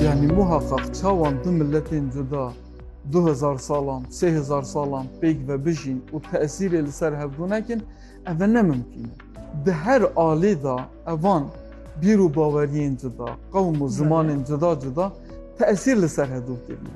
Yanî muheqeq çawan du miletên cuda du hezar salan, sê hezar salan pêk ve bijîn û tesîrê li ser hevdu nekin, ev e nemimkîn e. Di her alî de evan bîr û baweriyên cuda, qewm û zimanên cuda cuda tesîr li ser hevdu kirine.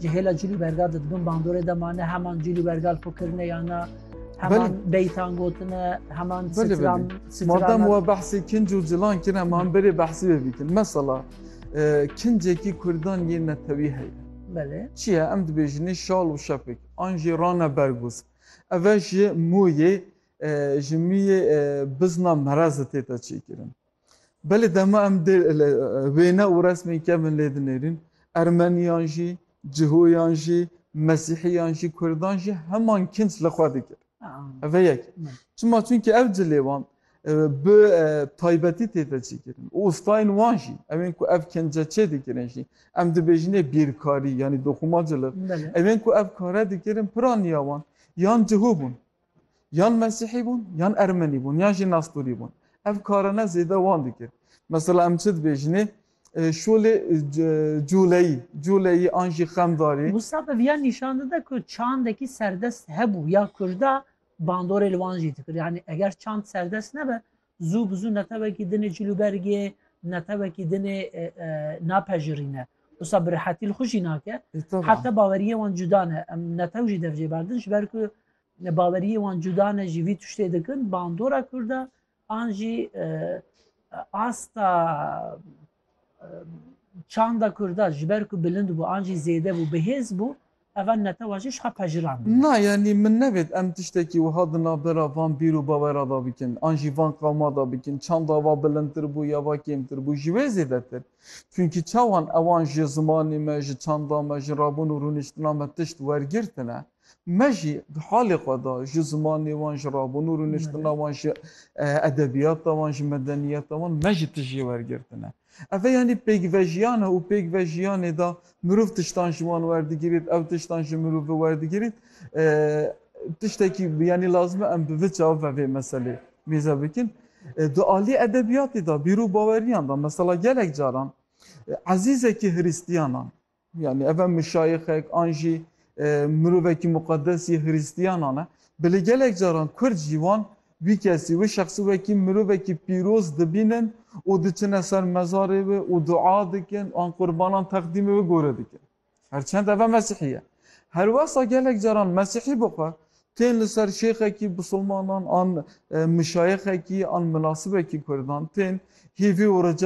Ji hêla cîl û bergal de dibin bandorê de mane heman cîl û bergal xwe kirine yana heman beytan gotine heman sitran Madem we behsê kinc û cilan kine man berê behsî vê bikin. Mesela kincekî Kurdan yên netewî heye. Belê. Çi ye em dibêjinê şal û şefik an jî rane bergûz. Ev ji mûyê ji mûyê bizna merezi tête çêkirin. Belê dema em dê li wêne û resmên kevin lê dinêrîn, Ermeniyan jî, Cihoyan jî, Mesîhiyan jî, Kurdan jî heman kinc li xwe dikir. Ev e yek. Çima çunke ev cilê wan bi taybetî tê de çêkirin û ustayên wan jî ewên ku ev kince çê dikirin jî em dibêjinê bîrkarî yanî doxûma cilif ewên ku ev kare dikirin piraniya wan yan cihû bûn. Yan Mesîhî bûn, yan Ermenî bûn, yan jî Nastorî bûn. Ev karane zêde wan dikir. Mesela em çi dibêjinê, şolê culeyî, culeyî an jî xemdarî. Mûsab ev ya nîşan dide ku çandekî serdest hebû ya Kurda bandorê li wan jî dikir. Yanî eger çand serdest nebe Zû bi zû netewekî din ê cilûbergê, netewekî din ê napejirîne. Wisa bi rihetî li xwe jî nake. Heta baweriyê wan cuda ne. Em netew jî dev jê berdin ji ber ku baweriyê wan cuda ne jî vî tiştê dikin bandora Kurd e an jî asta Çanda Kurda ji ber ku bilind bû an jî zêde bû bihêz bû, eva netewa jî jixwe pejirandine. Na, yanî min nevêt em tiştekî wiha di navbera van bîr û bawera de bikin an jî van qewma de bikin, çanda va bilindtir bû ya va kêmtir bû, ji wê zêdetir. Çunkî çawan ewan ji zimanê me, ji çanda me, ji rabûn û rûniştina me tişt wergirtine. Me jî di halê xwe de ji zimanê wan, ji rabûn û rûniştina wan, ji edebiyata wan, ji medeniyeta wan me jî tişt jê wergirtine. Ev yanî pêkvejiyan e û pêkvejiyanê de mirov tiştan ji wan werdigirît, ew tiştan ji mirovê werdigirît. Tiştekî yanî lazim e em bi vi çav ve vê meselê mêze bikin. Di aliyê edebiyatê de, bîr û baweriyan de mesela gelek caran ezîzekî hiristiyanan Yanî ev e muşayixek an jî mirovekî muqedes yê Hrîstiyanan e. Belê gelek caran Kurd jî wan wî kesî wê şexsî wekî mirovekî pîroz dibînin û diçine ser mezarê wê û dua dikin an qurbanan teqdîmê wê gore dikin. Her çend ev e Mesîhî ye. Her wesa gelek caran Mesîhî bi xwe tên li ser şêxekî bisilmanan an muşayixekî an minasibekî Kurdan tên hîvî û rica